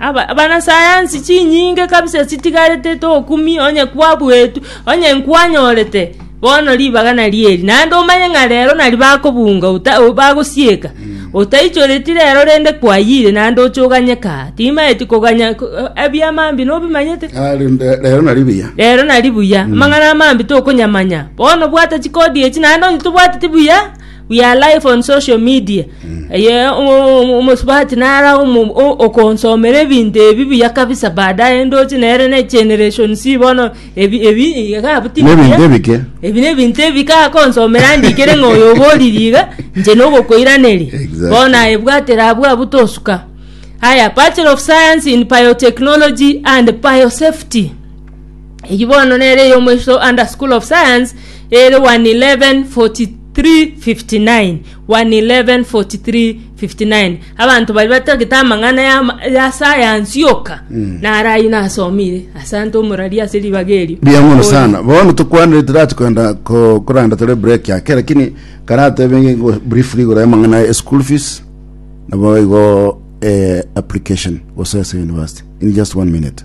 Aba- abanasayansi chinyinge kabisa chitigarete tokumi onye kwabuetwe, onye nkwanyorete bono ribaga nario eri, naende omanye ng'a rero nari bakobunga ota- o- bagosieka, otaichoreti rero rende kwayire naende oche oganyeke aa. Timaeti koganya ko- o- ebiama mbi nobimanyete? Ah, rende rero nari buya rero nari buya amang'ana amambe tokonyamanya bono bwata chikodi echi naende onye tobwateti buya We are live on social media. Eye o- o- o- omosubati nara omo- o- okonsomera ebinto ebi buya kabisa baadaye ndoche nere ne generation si bono ebi ebi iga buti Nebinto buya. ebike. ebi nebinto ebi kakonsomera ndikere ng'a oyo oboriri iga nche nogokoiraneri Exactly. bono ebwatera abwo abwo tosuka haya bachelor of science in biotechnology and biosafety Eyio bono nere eyomoiso under School of Science ere 1114359 1114359 abanto bari batagete amang'ana ya, ya sayansi yoka mm. nare ayio nasomire asante omorari ase ribaga erio Bia mono sana. Bono tukwanire tirachi kwenda ko- koranda tore break yake lakini karatebenge go briefly igoro ya mang'ana ya school fees nabo igo eh, application gose ase university in just one minute.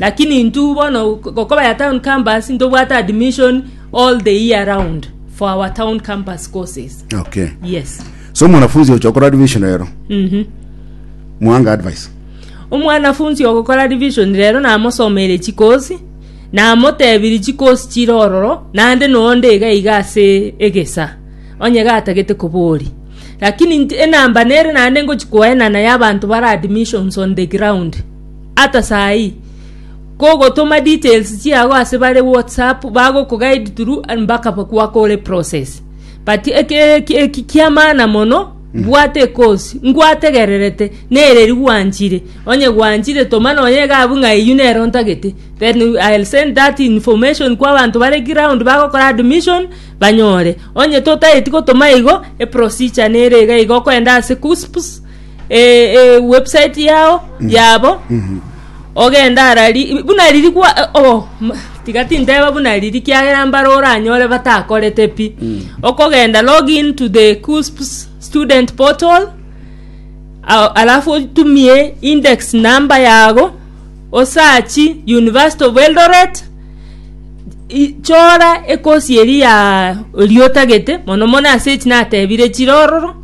Lakini intwe bono gokobaya town campus ntobwate admission all the year round for our town campus courses. Okay. Yes. So mwanafunzi ocho okora division rero. Mhm. Mwanga advice. Omwanafunzi ogokora division rero namosomeire chikosi namotebirie chikosi chire ororo nande nonde iga iga ase egesa onye gatagete kobori lakini nti- enamba nere nande ngochi koenana ya abanto bare admissions on the ground Ata saa ii kogotoma details chiago ase bare whatsapp bagokoguide through mpaka gwake ore process but eki kia maana mono mm. bwate kosi ngwategererete nereri gwanchire onye gwanchire toma nonye gabu ng'a eyu nero ntagete then I'll send that information kwa bantu bare ground bagokora admission banyore onye totaeti gotoma igo e procedure nere iga igo okoenda ase KUSPS eh, eh, website yao yabo ogende arari buna riri kwa eh, oh, m- tiga tinteba buna riri kiagera mbare oranyore batakorete pi okogenda log in to the cusps student portal a- alafu otumie index number yago osachi university of eldoret i- chora ekosi eri ya riotagete mono mono ase echi natebire chire ororo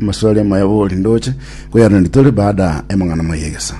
Amaswali amaya bori ndoche koyaranderia tore baada y'amang'ana amaya egesa.